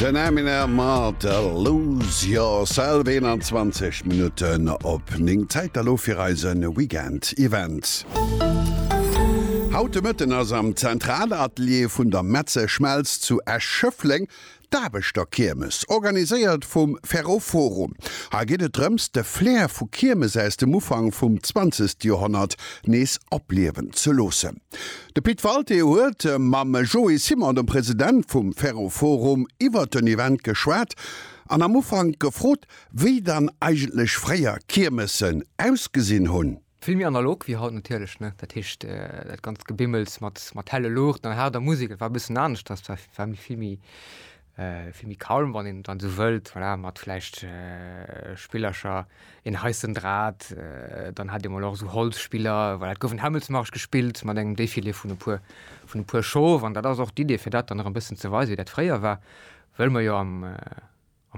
Den Eminem mat Lose Yourself, 21 Minutten op 9. Zäit da lo fir eise Weekend Event. Haut de Mëtten ass am Zentralatelier vun der Metze Schmelz zu Esch-Schëffleng d'Aarbechterkiermes, organiséiert vum Ferroforum. Hei geet et drëms, de Flair vu Kiermes aus dem Ufank vum 20. Joerhonnert nees opliewen ze loossen. De Pit Walté huet mam Joé Simon, dem President vum Ferroforum, iwwert den Event geschwat an am Ufank gefrot, wéi dann eigentlech fréier Kiermessen ausgesinn hunn. Vill méi analog wéi haut natierlech, ne? Dat heescht, dat ganzt Gebimmels mat helle Luuchten an haarder Musek, et war e bëssen aneschters, war vill méi Vill méi calm, wann een et dann esou wëllt, voilà, mat vläicht Spillercher, een heissen Drat, dann hat ee mol och esou Holzspiller, voilà, et gouf en Hämmelsmarsch gespillt mat engem Défilé vun e puer, vun e puer Schof an dat ass och d'Idee, fir dat dann erëm e bëssen ze weisen, wéi dat fréier war, wëll mer jo am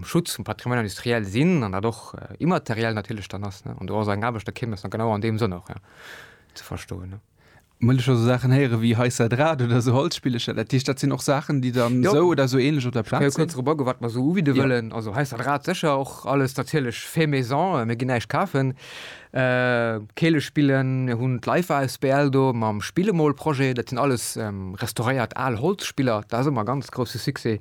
Schutz vum Patrimoine industriel sinn an dat och immateriell natierlech dann ass, ne, an do ass eng Aarbecht, da kéim dat dann genau an deem Sënn och, ja, ze verstoen. Well ech also Saachen héieren, ewéi hei ça drate oder esou Holzspillecher, dat heescht, dat sinn och Saachen, déi dann esou oder esou ähnlech op der Plaz sinn? Ech ka jo kuerz drop agoen, wat mer esou ubidde wëllen. Also hei ça drate sécher och alles natierlech fait maison, mir ginn näischt kafen. Keele spillen, mir hunn d'Leifer asbl do mam Spillemol-Projet, dat sinn alles restauréiert al Holzspiller, dat ass ëmmer e ganz grousse Succès.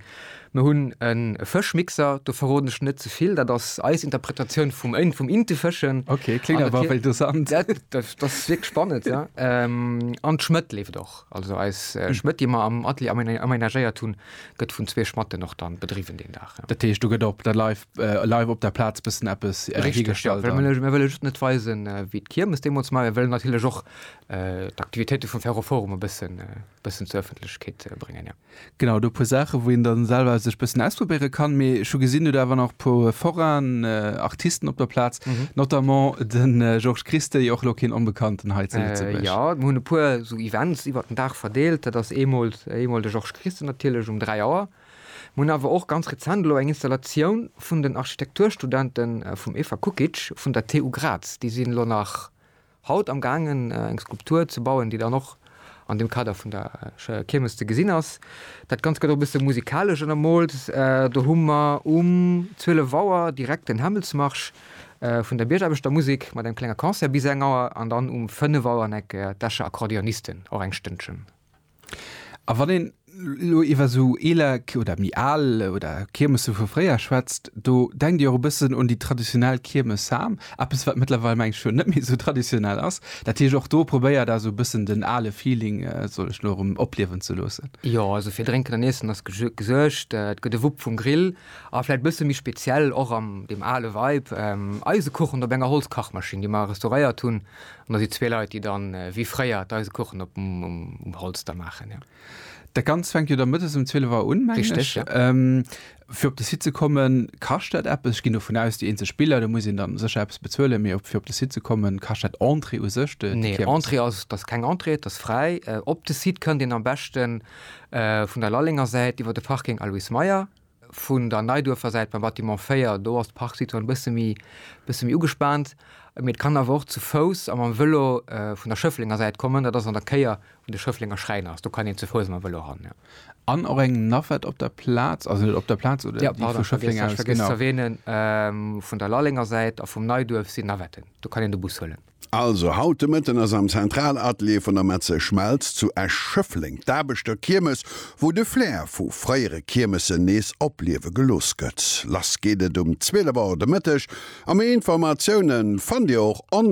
Mir hunn e Fëschmixer, do verroden ech net ze vill, dat ass eis Interpretatioun vum Inte fëschen. Ok, kléngt awer wéi dosant. Dat ass wierklech spannend, jo. An d'Schmëtt leeft och. Also eis Schmëtt, déi mer am Atelier amenagéiert hunn, gëtt vun zwee Schmatten och dann bedriwwen deen Dag, jo. Dat heescht, do gëtt op der live op der Plaz bëssen eppes hiergestallt? Richteg, jo. Mir wëlle just net weisen, wéi d'Kiermes deemools war. Mir wëllen natierlech och d'Aktivitéite vum Ferroforum e bëssen zur Ëffentlechkeet bréngen, jo. Genau, do e puer Saachen, wou een dann selwer sech bëssen ausprobéieren kann. Mee ech hu gesinn, Dir hutt awer an och e puer Forain Artisten op der Plaz, notamment den Georges Christey, och elo keen Onbekannten hei zu Lëtzebuerg. Jo, mir hunn e puer esou Events iwwert den Dag verdeelt. Dat ass eemol de Georges Christey natierlech um 3 Auer. Mir hunn awer och ganz rezent elo eng Installatioun vun den Architekturstudente vum Eva Kukic vun der TU Graz. Déi sinn elo nach Haut am gaangen eng Skulptur ze bauen, déi dann och an dem Kader vun der Kiermes ze gesinn ass. Dat Ganzt gëtt och e bësse musikalesch ënnermoolt. Do hu mer um 12 Auer direkt den Hämmelsmarsch vun der Biergaarbechtermusek mat engem klenge Concert bis eng Auer an dann um 5 Auer en Eck d'Escher Akkordeonisten och eng Stënnchen. A wann een elo iwwer esou eeler oder méi al oder Kiermesse vu fréier schwätzt, do denkt Dir och e bëssen un déi traditionell Kiermes Sam, eppes wat mëttlerweil mengen ech schonn net méi esou traditionell ass. Dat heescht och do probéiert Der esou e bëssen den ale Feeling, soll ech elo erëm, opliewen ze loossen? Jo, also fir Drénken an Iessen ass gesuergt. Et gëtt e Wupp vum Grill a vläicht e bësse méi speziell och an deem ale Vibe, Eisekuchen op enger Holzkachmaschinn, déi mer restauréiert hunn, An da si zwee Leit, déi dann, wéi fréier, d'Eisekuchen op um Holz da maachen, jo. Dat Ganzt fänkt jo da mëttes ëm 12 Auer un, mengen ech. Richteg, jo. Fir op de Site ze kommen, kascht dat eppes? Ech ginn dovun aus, déi eenzeg Biller, do muss een dann sécher eppes bezuelen, mee fir op de Site ze kommen, kascht dat Entrée u sech, de, déi Kiermes? Nee, Entrée, dat ass keng Entrée, dat ass fräi. Op de Site kënnt een am beschten vun der Lallenger Säit iwwer de Parking Aloyse Meyer. Vun der Neiduerfer Säit beim Bâtiment 4, do ass d'Parksituatioun e bësse méi, bësse méi ugespaant. Mee et kann awer och zu Fouss a mam Vëlo vun der Schëfflenger Säit kommen. Dat ass an der Kéier, wou de Schëfflenger Schräiner ass. Do kann een zu Fouss a mam Vëlo ran, jo. An och eng Navette op der Plaz, also net op der Plaz, oder déi vu Schëffleng aus, genau. Jo, pardon, ech hat vergiess ze erwähnen, vun der Lallenger Säit a vum Neiduerf sinn Navetten. Do kann een de Bus huelen. Also, haut de Mëtten ass am Zentralatelier vun der Metze Schmelz zu Esch-Schëffleng d'Aarbechterkiermes, wou de Flair vu fréiere Kiermesen nees opliewe gelooss gëtt. Lass geet et um 12 Auer de Mëtteg a méi Informatiounen fannt Dir och online.